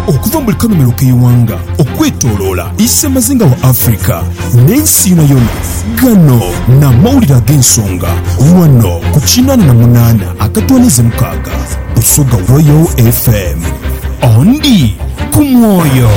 Okuva mu buli kanhumilo k'eighanga okwetoloola isemazinga wa Africa n'ensi yonayona, gano n'amawulire ag'ensonga ghano ku kinaana na munaana akatwaniize mukaaga Busoga Royal FM. Ondi ku mwoyo.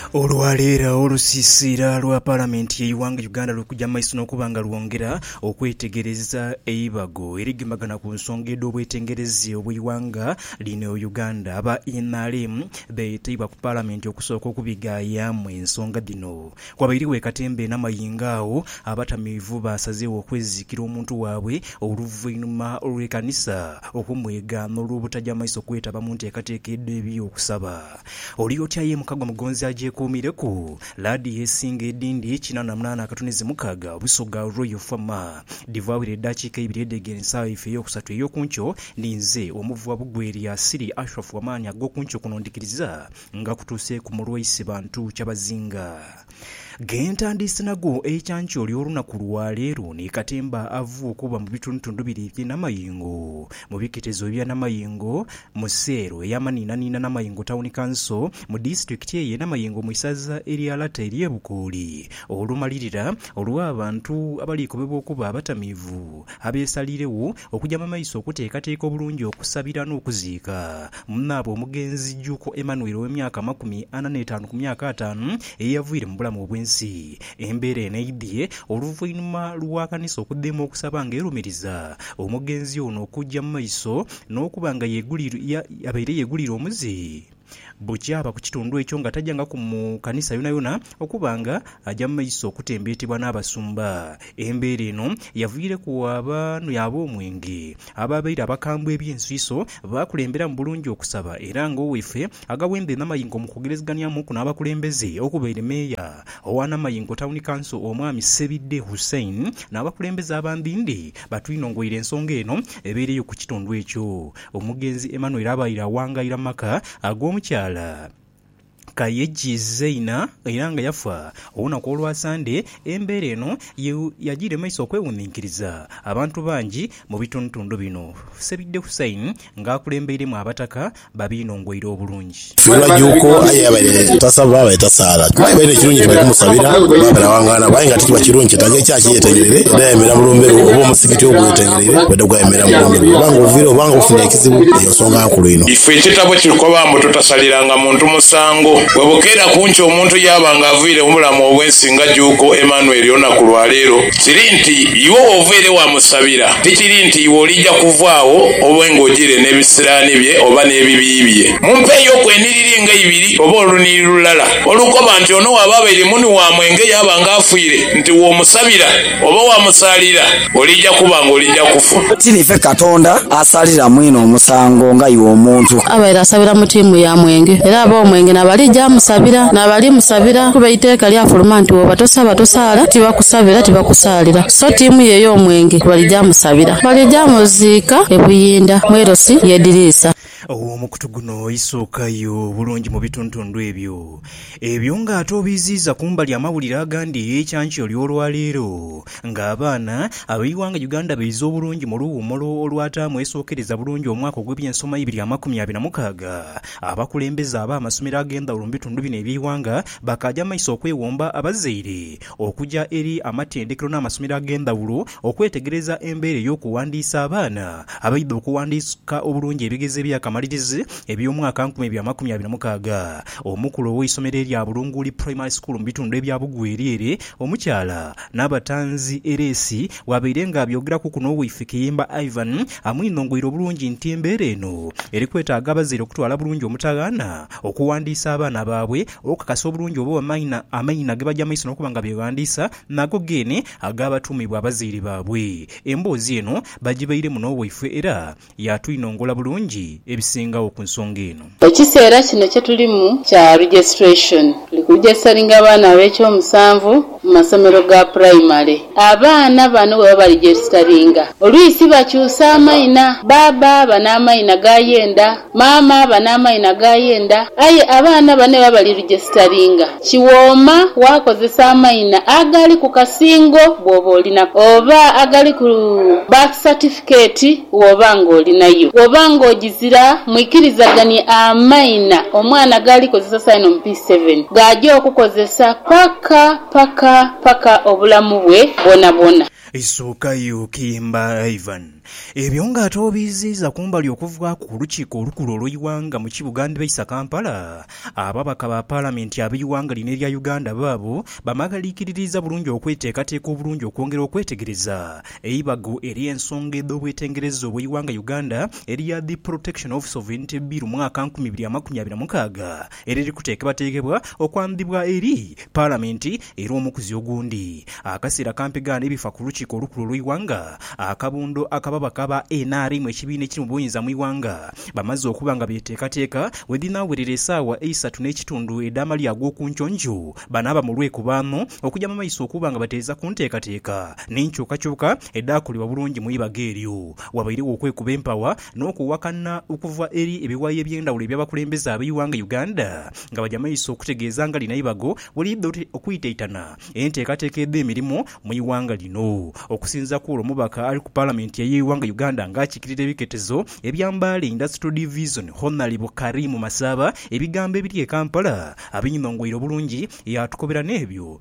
Olwa leero olusiisiira lwa Palamenti y'eighanga Uganda luli kuja mu maiso n'okuba nga lwongera okwetegereza eibago erigembagana ku nsonga edh'obwetengereze obw'eighanga lino Uganda. Aba nrm beeteibwa ku Palamenti okusooka okubighayaamu ensonga dhino. Wabairegho e katemba e Namayingo agho abatamiivu baasazeegho okweziikira omuntu waabwe oluvainhuma lw'ekanisa okumwegaana olw'obutaja maiso kwetaba mu nteekateeka edh'eby'okusaba. Oli otya ye mukago mugonzi agyekuumireku? Laadiyo esinga edindi kinaana munaana akatuni zi mukaaga Busoga Royal Farmer. Dhivaawire edaakiika eibiri edh'egere nsagha yaife ey'okusatu ey'oku nkyo. Ni nze Omuvugha Bugwelya Siri Ashraf Amaani ag'oku nkyo kuno ndhikiriza nga kutuuseeku mu lwa ise bantu kyabazinga. Ghe ntandiise nago eikyankyo ly'olunaku lwa leero ni katemba ava okuba mu bitundutundu bire eby'e Namayengo mu biketezo ebya Namayengo mu seelo ey'amanhiinanhiina Namayengo Town Council mu disitulikiti eye Namayengo mu isaza erya Lata ery'e Bukooli olumalirira olw'abantu abaliikobebwa okuba abatamiivu abeesaliiregho Okuja mu maiso okuteekateeka obulungi okusabira n'okuziika munaabwe omugenzi Jjuuko Emmanuel ow'emyaka amakumi ana n'etaanu ku myaka ataanu eyaviire mu bulamu obw'ensi. Embeera eno eidhie oluvainhuma lwa kanisa okudheema okusaba nga erumiriza omugenzi ono okuja mu maiso n'okuba nga yabaire yeguliire omuzi. Bukya aba ku kitundu ekyo nga tajangaku mu kanisa yonayona okuba nga aja mu maiso okutembeetebwa n'abasumba. Embeera eno yaviireku abanhwi ab'omwenge abaabaire abakambwe eby'ensuiso baakulemberamu bulungi okusaba era ng'owaife Agawembe Namaingo mu kwogerezeghanhiamuku n'abakulembeze okubaire Meeya owa Namaingo Tawuni Kanso Omwami Ssebidde Hussein n'abakulembeze abandindi batwinongoire ensonga eno ebeereyo ku kitundu ekyo. Omugenzi Emmanuel abaire awangaira mu maka ag'omukyala Kayeji Zeina era nga yafa olunaku olwa Sande, embeera eno ye yagiire mu maiso okwewuninkiriza abantu bangi mu bitundutundu bino, Ssebidde Hussein nga akulembeiremu abataka babiinongweire obulungi. Fiirwa juuko aye yabaire tasaba abaire tasaala. Kuba yabaire ekirungi nti bali kumusabira oba balawangaana aye nga tikiba kirungi kyetaaga ekyaachi eyetengereire edhayemera mu lumbe lwo oba omusigiti ogwetengereire bwedha gwayemera mu lumbe lwo. Oba nga oviire oba nga ofunye ekizibu eyo nsonga nkulu inho. Ife ekitabo kitukoba mbu tutasaliranga muntu musango. Bwebukeera ku nkya omuntu yaaba nga aviire mu bulamu obw'ensi nga juuko Emmanuel olunaku lwa leero, kiri nti iwe woveire wamusabira tikiri nti iwe oliija kuvaagho obe nga ojiire n'ebisiraani bye oba n'ebibi bye. Mumpeeyoku enhiriri nga ibiri oba olunhiriri lulala olukoba nti ono waaba abaire muni waamwe nge yaaba nga afiire, nti womusabira oba wamusaalira olija kuba nga olija kufa. Ti nife Katonda asaalira mwine omusango nga iwe omuntu. Abaire asabira mu tiimu ya mwenge era aba omwenge n'abalija amusabira n'abali musabira kuba eiteeka lyafuluma nti wooba tosaba tosaala, tibakusabira tibakusaalira. So tiimu ye ey'omwenge balija musabira, balija muziika e Buyinda mu LC y'ediriisa. Omukutu guno isookayo bulungi mu bituntundhu ebyo ebyo nga ate obiiziiza kumbali amawulire agandi eyeikyankya oly'olwaleero nga abaana ab'eighanga Uganda baize obulungi mu luwuumulo olwataamu esookereza bulungi omwaka ogw'ebyensoma ibiri amakumi abiri na mukaaga. Abakulembeze ab'amasomero ag'endhawulo mu bitundu bino eby'eighanga bakaaja maiso okwewomba abazaire okuja eri amatendekero n'amasomero ag'endhawulo Okwetegereza embeera ey'okuwandiisa abaana abaidha okuwandiika obulungi ebigezo eby'akamalirizi eby'omwaka nkumi bya makumi abiri mukaaga, omukulu ow'eisomero erya Bulunguuli Primary School mu bitundu ebya Bugweri ere omukyala Nabatanzi Eresi bwabaire nga abyogeraku kuno wifi Kiyimba Ivan amwinhongoire obulungi nti embeera eno eri kwetaaga abazaire okutwala bulungi omutaghaana okuwandiisa abaana baabwe okukakasa obulungi oba amaina gebaja maiso n'okuba nga beghandiisa nago geene ag'abatumibwa abazaire baabwe. Emboozi eno bagibairemu n'owaifwe era yaatwinongola bulungi ebisingagho ku nsonga eno. Ekiseera kino kye tulimu kya registration. Tuli ku registaringa abaana ab'ekyomusanvu mu masomero ga primary. Abaana bano bwebaba baregisteringa, olwisi bakyusa amaina, baaba aba n'amaina ga yenda. Maama aba n'amaina g'ayenda, aye abaana bane baba bali rijesitaringa. Kiwooma waakozesa amaina agali ku kasingo bw'oba oli nako, oba agali ku birth certificate bw'oba ng'oli nayo. Bw'oba ng'ogizira, mwikirizaganie amaina omwana g'alikozesa saino mu P7 g'aja okukozesa paka, paka, paka obulamu bwe bwonabwona. Isuukayo okiyemba Ivan. Ebyo nga ate obiiziiza kumbali okuvaaku ku lukiiko olukulu olw'eighanga mu kibuga ndhibaisa Kampala, ababaka ba Palamenti ab'eighanga lino erya Uganda baabo bamaghalikiririiza bulungi okweteekateeka obulungi okwongera okwetegereza eibago ery'ensonga edh'obwetengereza obw'eighanga Uganda erya The Protection of Sovereignty Bill mwaka nkumi ibiri amakumi abiri na mukaaga eriri kuteekebwateekebwa okwandhibwa eri Palamenti era omukuzi ogundi akaseera kampi gaana ebifa ku Lukiiko Olukulu olw'eighanga, akabundo ak'ababaka ba nrm ekibiina ekiri mu buyinza mu ighanga, bamaze okuba nga beteekateeka wedhinaawerera esaawa eisatu n'ekitundu edh'amalya ag'okunkyonjo banaaba mu lwekubaano okugya mu maiso okuba nga batereeza ku nteekateeka n'enkyukakyuka edhaakolebwa bulungi mu ibaga eryo. Wabairegho okwekuba empawa n'okuwakana okuva eri ebiwayi eby'endhawulo eby'abakulembeze ab'eighanga Uganda nga bagya maiso okutegeeza nga lino eibago bwelidha okwitaitana enteekateeka edh'emirimu mu ighanga lino. Okusinzira kw'olwo omubaka ali ku Palamenti ey'eighanga Uganda nga akiikirira ebiketezo ebya Mbale Industrial Division Honalebo Karim Masaaba ebigambo ebiri e Kampala abinhongoire obulungi yaatukobera n'ebyo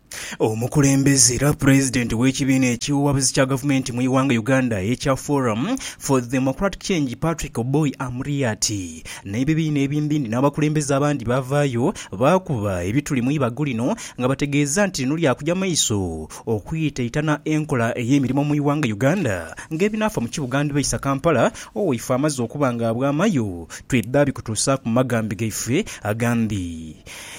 Omukulembeze era pulezidenti w'ekibiina ekiwabuzi kya gavumenti mu ighanga Uganda ekya Forum for Democratic Change Patrick Oboi Amuriat n'ebibiina ebimbindi n'abakulembeze abandi baavaayo baakuba ebituli mu ibago lino nga bategeeza nti lino lyakugya maiso okwitaitana enkola ey'emirimo mu ighanga Uganda ng'ebinaafa mu kibuga ndibaisa Kampala owaife amaze okuba nga abwamayo twidha bikutuusaaku mu magambi gaife agandi.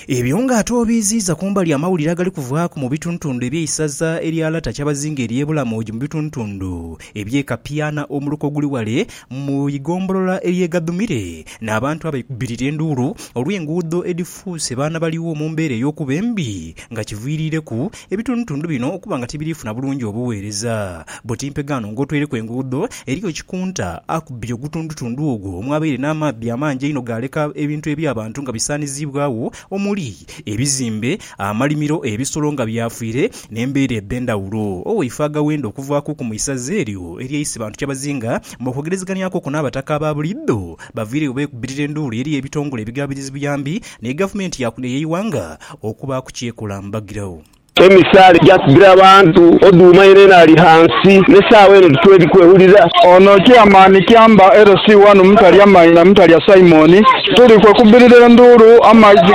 Ebyo nga ate obiiziiza ku mbali amawulire agali kuvaaku mu bitundutundu eby'eisaza erya Lata Kyabazinga ery'e Bulamoji mu bitundutundu eby'e Kapiana omuluka oguli ghale mu igombolola ery'e Gadhumire n'abantu abaikubirira enduulu olw'enguudo edhifuuse baanabaligho mu mbeera ey'okuba embi nga kiviiriireku Ebitundutundu bino okuba nga tibiri funa bulungi obuweereza. Bwoti mpegaano ng'otweireku enguudo, eriyo kikunta akubbye ogutundutundu ogwo omwabaire n'amaadhi amangi einho gaaleka ebintu eby'abantu nga bisaaniziibwagho omuli, ebizimbe, amalimiro, ebisolo nga byafiire n'embeera edh'endhawulo. Owaife Agawenda okuvaakuku mu isaza eryo erya Isibantu Kyabazinga mw'okwogerezeghanyaku okwo n'abataka aba buliidho baviireyo beekubbirira enduulu eri ebitongole ebigaabirizi buyambi Ni gavumenti ya kule ey'eighanga okubaaku ky'ekola mbagiragho. Emisaala egya kugira abantu oduuma yenayena ali ghansi n'esaawa eno titweri kwewulira. Ono Chairman Kyamba LC wanu Mutalya Maina Mutalya Simon tuli kwekubirira enduulu amaizi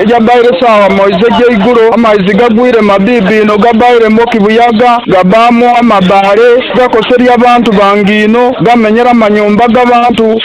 gabaire saawa moizi egyeigulo amaizi gagwire mabiibi inho gabaire mwo kibuyaga gabaamu amabaale gakoseria bantu bange inho gamenyera manyumba gabantu.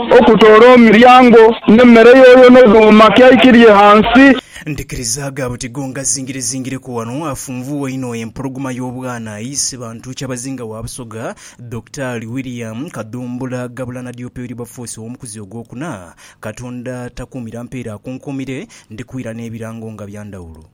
Okutoola omiryango n'emmere yooyo n'odhuuma kyaikirye ghansi. Ndhikirizaaga buti go ngazingirezingireku wano afunvuwa inho empologoma y'obwana aise bantu Kyabazinga wa Busoga, Dokitaali William Kadhumbula Gabula Nadiope Wilberforce ow'omukuzi ogwokuna, Katonda takuumira mpeera akunkuumire, ndhikwira n'ebirango nga bya ndhawulo.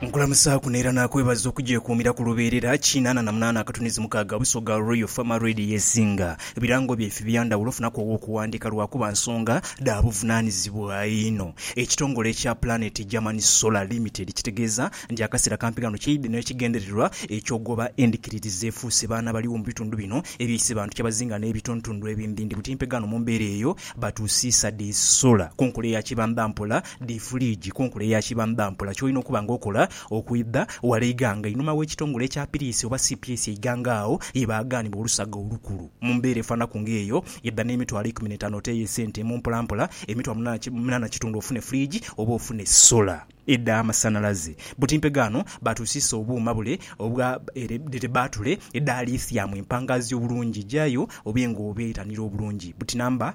Nkulamusaaku n'era naakwebaza okugyekuumira ku lubeerera kinaana na munaana akatunizi mukaaga Busoga Royal Farmer Radio Yesinga birango byaife bya ndhawulo ofunaku ow'okuwandiika lwakuba nsonga dha buvunaanizibwa inho. Ekitongole ekya Planet German Solar Limited kitegeeza nti akaseera kampi ghano kyeidhye n'ekigendererwa eky'ogoba endhikiririza efuuse baana baligho mu bitundu bino ebyaise bantu kyabazinga n'ebituntundu ebindindi buti mpegaano mu mbeera eyo batusiisa dhi solar ku nkola eya kibambampola Dhi fuliigi kunkula eya kibamba mpola ky'olina okuba nga okola okwidha wala eighanga einhuma w'ekitongole ekya piriisi oba cps eighanga agho ye baaghanibwa olusaga olukulu. Mu mbeera efaanaku ng'eyo, idha n'emitwalo eikumi n'etaano oteeyo esente emu mpolampola, emitwalo munaana kitundu ofune fuliigi oba ofune sola edha amasanhalaze. Butimpe ghano baatusiisa obuuma bule obwa baatule edha Lithium empangaazi obulungi, jayo obe ng'obeetanira obulungi buti namba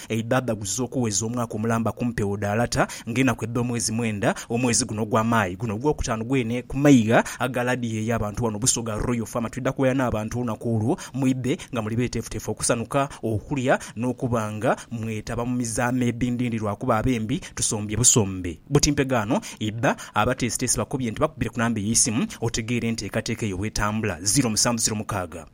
Eidhadha guzize okuweza omwaka omulamba ku mpewo dha lata nga enaku edha omwezi mwenda omwezi guno ogwa Mayi. Guno ogwokutaanu gwene ku maigha aga ladiyo ey'abantu wano Busoga Royal Farm twidha kuwaya n'abantu olunaku olwo mwidhe nga muli betefutefu okusanuka, okulya n'okuba nga mwetaba mu mizaama edhindhindhi lwakuba abembi tusombye busombe. Buti mpegaano idha abateesiteesi bakobye nti bakubire ku namba ey'eisimu otegeere enteekateeka eyo bwetambula, ziro musanvu ziro mukaaga.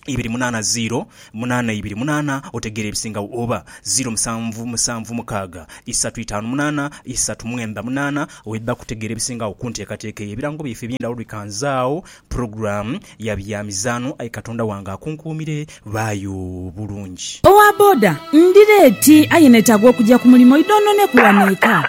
ibiri munaana ziiro munaana ibiri munaana otegeera ebisingagho oba ziiro musanvu musanvu mukaaga isatu itaanu munaana isatu mwenda munaana oidha kutegeera ebisingagho ku nteekateeka eyo. Ebirango byaife eby'endhawulo bikanzaagho pulogulaamu ya bya mizaano aye Katonda wange akunkuumire baayo bulungi. Owa boda, Ndi leeti aye neetaaga okugya ku mulimo idhonhoneku wano eka.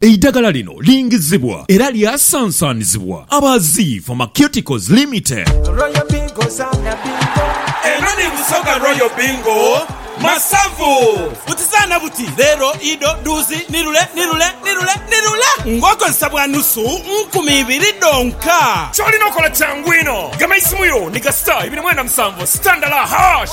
Eidagala lino lingizibwa era lyasansanizibwa aba Zii Pharmaceuticals Limited. Royal Bingo zaana bingo. Eno ni Busoga Royal Bingo Masavu. Buti zaana buti, leero, ido, dhuuzi, ni lule, ni lule, ni lule, ni lule ng'okozesa bwa nusu nkumi ibiri dhonka. Ky'olina okola kyangu inho. Gema eisimu yo ni gasita ibiri mwenda musanvu, sitandala, hash.